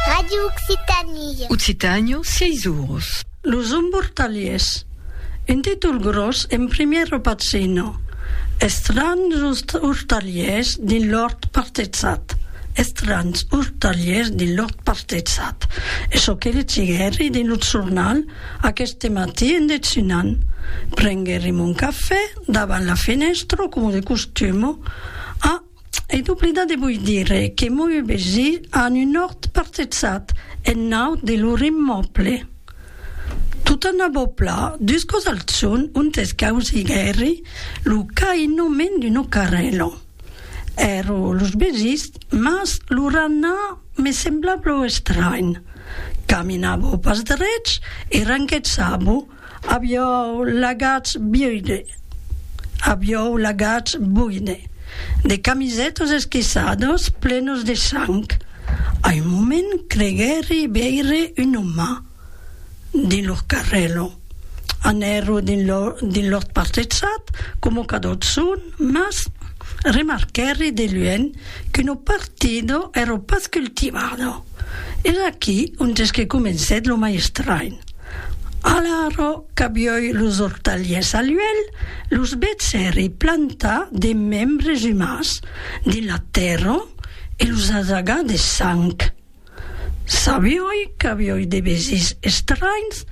Radio Occitània. Occitània, 6 oros. Los embortalhiers. Un títol gròs en primièr o patzina. Estranhs ortalhiers dins l'òrt partetzat. Estranhs ortalhiers dins l'òrt partetzat. Es çò que legiguèri dins lo jornal aqueste matí en dejunan. Prenguèri mon cafè davant la fenèstra coma de costuma a. E lo pridan de voi dire que moi ue vesi an un òrt parcetsat en naut de lor immòble. Tota una bòbla d'uscos al son ontes causiguèri lo cainoment d'un ocarrelo. Ero los vesis, mas lo ranha me semblava pro estranh. Caminavo pas drech e ranquetsavo. Aviòu lagatz buide, aviòu lagatz buide, de camisètas esquiçadas plenas de sang. A un moment creguèri veire un òme dins lor carrèla. Anèro dins lor partetzat, coma qu'a tot son, mas remarquèri de luènh qu'una partida èra pas cultivada. Es aquí ontes que comencèt lo mai estranh. A la ro qu'avioi los ortaliers al uèlh, los bèts èri plantar de membres umans dins la tèrra e los asagar de sang. Sabioi qu'avioi de besís estranhs,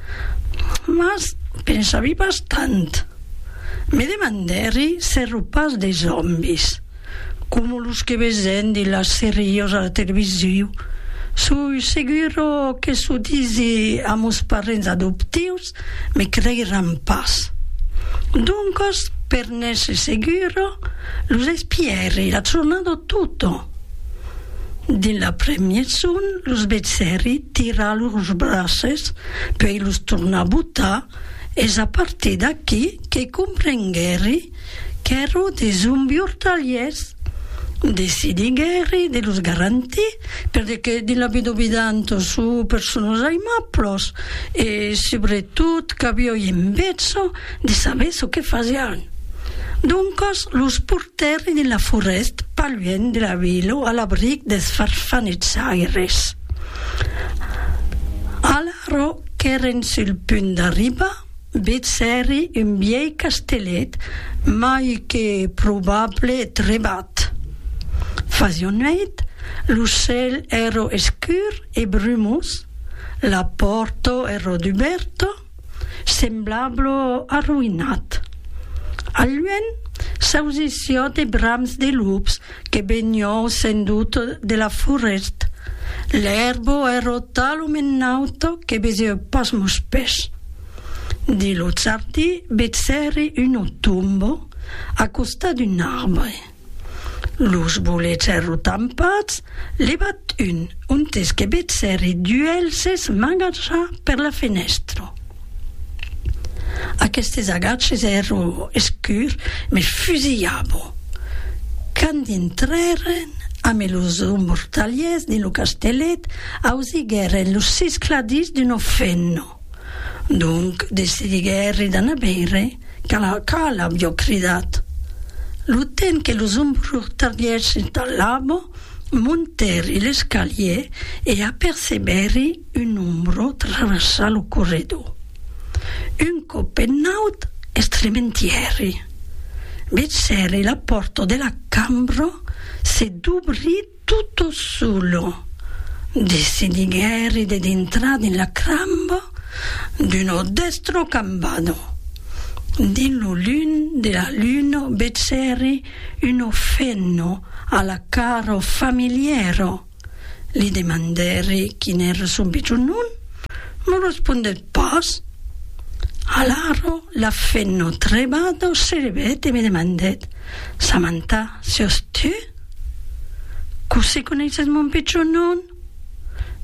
mas pensavi pas tant. Me demandèri s'èro pas de zòmbis. coma los que vesen de las seriós a la televisiu, soi seguro que s'o disi a mos parents adoptius me creiràn pas. Doncas, per n'èsser seguro, los espièri la jornada tota. Dins l'après-mièg son los vesèri tirar lors braces, puèi los tornar botar, es a partir d'aquí que comprenguèri Qu'èro de zombi ortalièrs, decidi guèri de los garantir, per de que dins la vida ovidan tot çò per son los aimablos, e subretot qu'avióien besonh de saber çò que fasián. Doncas los portèri dins la forèst pas luènh de la vila a l'abric deths farfanetzaires. Alara qu'èren sul punt d'arribar, Vètz hèri un vièi castellet, mai que probable trebat. Fasiá nuèit, lo cèl èro escur e brumós, la pòrta èro dubèrta, semblablo arroïnat. Al luènh s'ausissiá de brams de lups Que benhou sens doute de la forest, l'èrbo è rota lo mennaut que beseu pas mos pès. Di lo Charti vetsèri uno tombo a costat d'un arbre. Los bolets èrro tampats, levat un, ontes que vetsèri duelses magajar per la fenèstro. Aquestes agatges èron escurs, me fusilhavo. Quand dintrèren amé los mortaliers dins lo castellet, ausiguèren lo siscladís d'un ofenno. Donc decidiguèri d'anar veire qu'a l'avió cridat. Lo temps que los mortaliers s'installavo, montèri l'escalier e apercebèri Un ombró travessa lo corredor. Un còp penaut estrementièri. Vegèri la pòrta de la cambra se dubrir tota sola. Decidiguèri de dintrar dins la cramba d'una dèstra cambana. Dins lo lum de la luna vegèri una fenna a la cara familièra. Li demandèri quin èra son pichon non, m'o respondèt pas. Alara la fen no trebada o serebèt e me demandèt, Samantha, siòs tu? Cossí coneisses mon pichon non?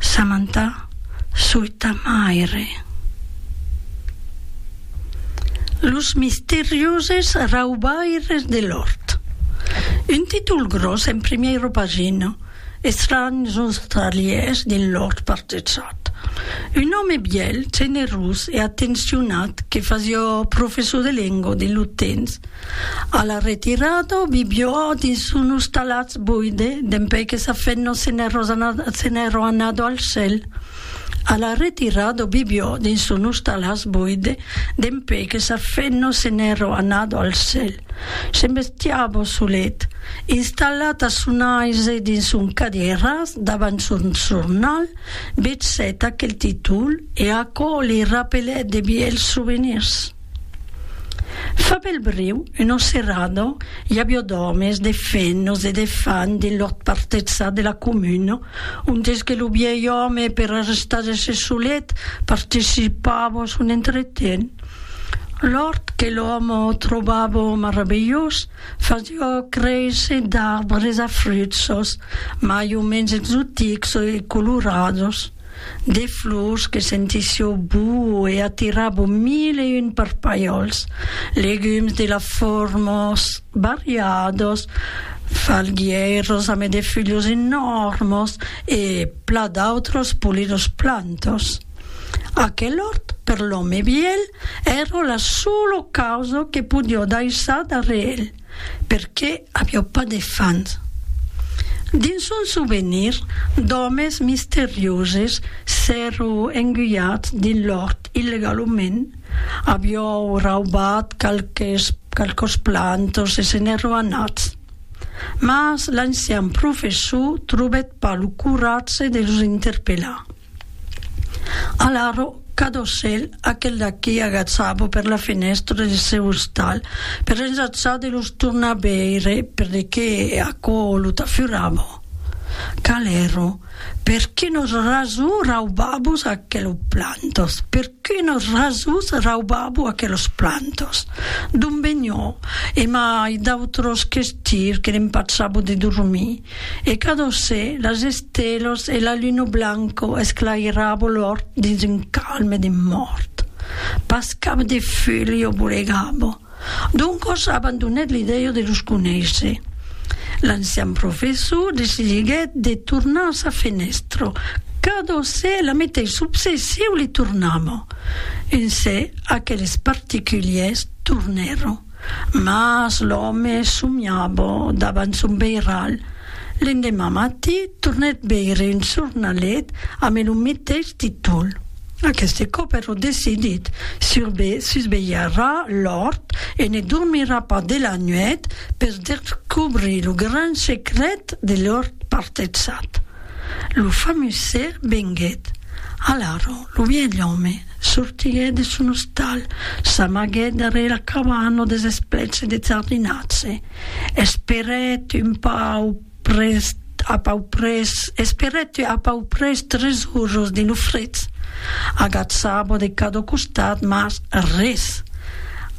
Samantha, soi ta maire. Los misterioses raubaires de l'òrt. Un títol gròs en primièra pagina, Estranhs ostralièrs dins l'òrt partejat. Un òme bièlh, generós e atencionat que fasiá professor de lenga dins lo temps. A la retirada, viviá dins son ostalatz boide, dempuèi que sa femna se n'èra anada al cèl. A la retirar do bibiò dins son ostalàs boide, dempé que sa fenno se n'èro anado al cèl, se'n bestiabo solet, installat a son aise dins son cadieràs davant son jornal, vetsèt aquel titol e aquò li rapelèt de bièlhs sovenirs. Fa belbriu, una serada, i aviá d'òmes, de fenos e de fan dins l'òrt partetzat de la comuna, ontes que lo vièlh òme, per arrestar-se solet, participava a son entreten. L'òrt, que l'òme trobava maravilhós, fasiá créisser d'arbres a fruits sos, mai o mens exotics e colorados. de flors que sentissió boa e atirabo mil e un parpalhòls, legums de la fòrmas variadas, falguièiras ame de fulhos enòrmas e pla d'autras polidas plantas. Aquel òrt per l'òme vièlh èra la sola causa que podió daissar darrèr el. perqué avió pas de fans. Dins son souvenir d'òmes misterioses s'èro enguiat dins l'òrt illegalament, avió raubat qualques qualques plantas e se n'èro anat. Mas l'ancian professor trobèt pas lo coratge de los interpelar. Alara, cada ocèl, aquel d'aqui agaçava per la fenèstra deth seu ostal per ensajar de los tornar veire, per de qué aquò lo tafurava. Calèro, per quinos rasons raubavos aquelos plantos? Per quinos rasons raubavo aquelos plantos? D'on venió? E mai d'autros questirs que l'empachavo de dormir. e cadosè las estelos e la luno blanco esclairabo l'òrt dins un calme de mòrt. Pas cap de fulh o bolegabo. Doncos abandonèt l'idèia de los conéisser. L'ancian professor decidiguèt de tornar a sa fenèstra, cadosè la metei subsè siu li tornamo. Uncè aqueles particulièrs tornèron. Mas l'òme somiava davant son beiral. L'endemà matí tornèt veire un jornalet ambe lo meteis títol. Aqueste còp ero decidit, susvelharà l'òrt e ne dormirà pas de la nuèit per descobrir lo gran secret de l'òrt partetzat. Lo famuser venguèt. Alara, lo vièlh òme. Sortiguèt de son ostal, s'amaguèt darrèr la cabana des esplets deth jardinatge, esperèt un pau près a pau près, esperèt a pau près tres urros de lo fred, agatzava de cada costat, mas res.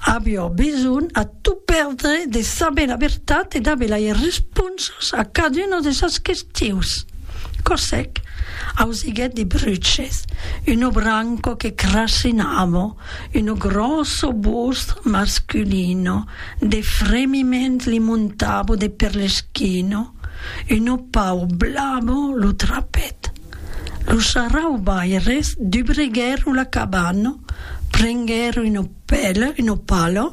Aviá besonh a tot pèrdre de saber la vertat e d'aver las responses a caduna de sas questions. Cosèc, ausiguèt de bruches, uno branco que crassinavo, uno grosso bust masculino, de fremiment li montavo de per l'esquino, uno pau blavo lo trapèt. Los sarraubaires dubreguèro la cabana, prenguèro uno Pèle uno palo,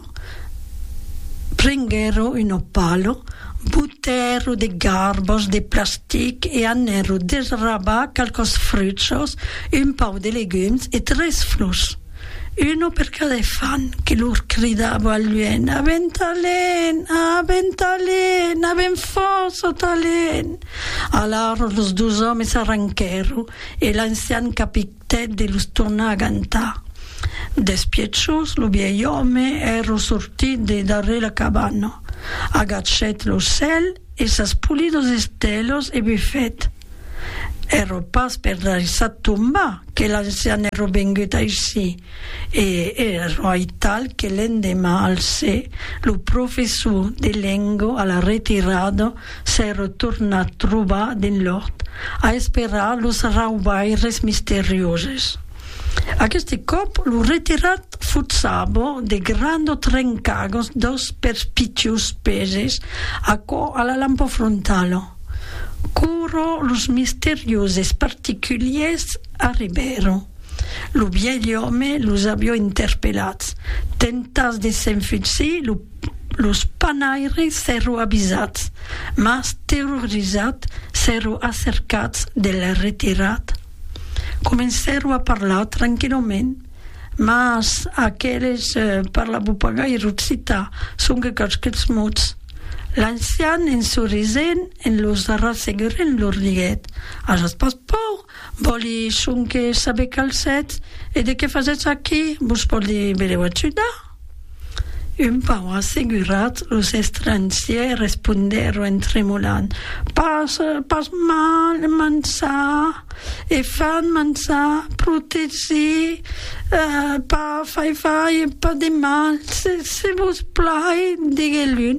prenguèro uno palo, butèro de garbos de plastic e anèro desrabar qualques fruchos, un pauc de legums e tres flors, uno per cada efant, que lor cridavo al luènh, A ben talent! A ben talent! A ben fòrça o talent! Alara los dos òmes s'arranquèro e l'ancian capitèn, Tèt de los tornar agantar. Despiechós, lo vièlh òme es rossortit de darrèr la cabana, agachèt lo cèl e sas polidos estèlos e bufèt, Èrò pas per laissar tombar que l'ancian èrò vengut aicí, e èrò aital que l'endeman alcè lo professor de lengo a la retirada Se retorna trobar dins l'òrt a esperar los raubaires misterioses. Aqueste còp lo retirat fut Sabo de Grando Trencagos dos perspicaus peses aquò a la lampa frontala. Quora los misterioses particuliers arribèron, lo vièlh òme los avió interpelats, tentats de s'enfutsir lo Los panaire s'èro avisats, mas terrorizat s'èro acercats de lè retirat. Comencèro a parlar tranquilament, mas aqueles parlavo pas gaire occitan, sonque qualques mots. L'ancian en sorisent en los rassegurent lor diguèt, Ajatz pas paur, Vòli sonque saber qual sètz e de qué fasètz aquí. Vos pòdi benlèu ajudar? Un pauc assegurat, los estrangièrs respondèron en tremolant, Pas, pas mal, manjar e fan manjar, protegir, pas fai fai e pas de mal, se vos plai, diguèt l'un.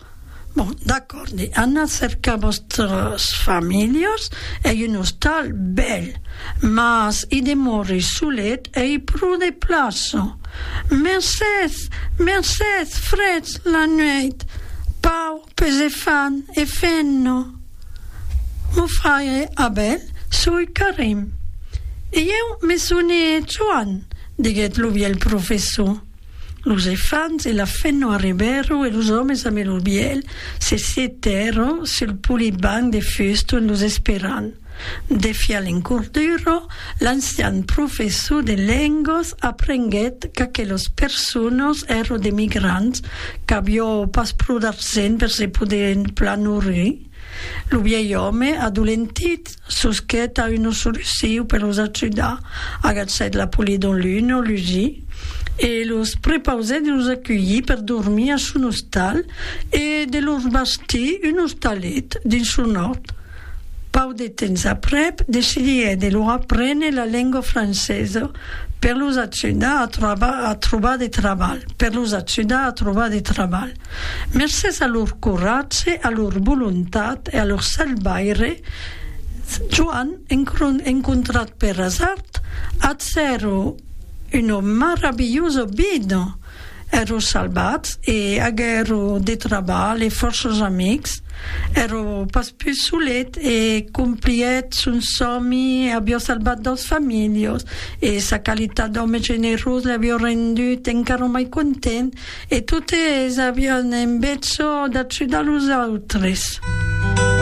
Bon, d'acòrdi, anatz cercar vòstras familhas, ei un ostal bèl, mas i demòri solet ei pro de plaça. Mercés! Mercés! Freds la nueit! Pau, pes e fan, e fenna! Mon fraire Abel, soi Carime. E ieu me sone Joan, diguèt lo vièlh professor. Los efants e la fenno arribèron e los òmes a Melobièl se setèron sul polit banc de fuston los esperant. Defiant l'encordura, l'ancian professor de lengas aprenguèt qu'aquelas personas èran d'emigrants qu'aviá pas pro d'argent per se poder plan nourrir. Lo vièlh òme, adolentit, Susquet a una soluciu per los ajudar, agatsèt la poli d'un lun o lusi e los prepausèt de los aculhir per dormir a son ostal e de lor bastir un ostalet dins son òrt. Pauc de temps aprèp, decidiguèt de lor aprene la lengua francesa per los ajudar a trobar de trabalh. Mercés a lor coratge, a lor volontat e a lor selvaire, Joan, encontrat per asard, ath cèro ua maravilhosa vida, ero salvats e aguèro de trabalh e fòrces amics, ero pas pus solet e complhíet son sòmi, avió salvat daus familhos e sa qualitat d'òme generós l'avió rendut encara mai content E totes avián en betzò d'ajudar los autres.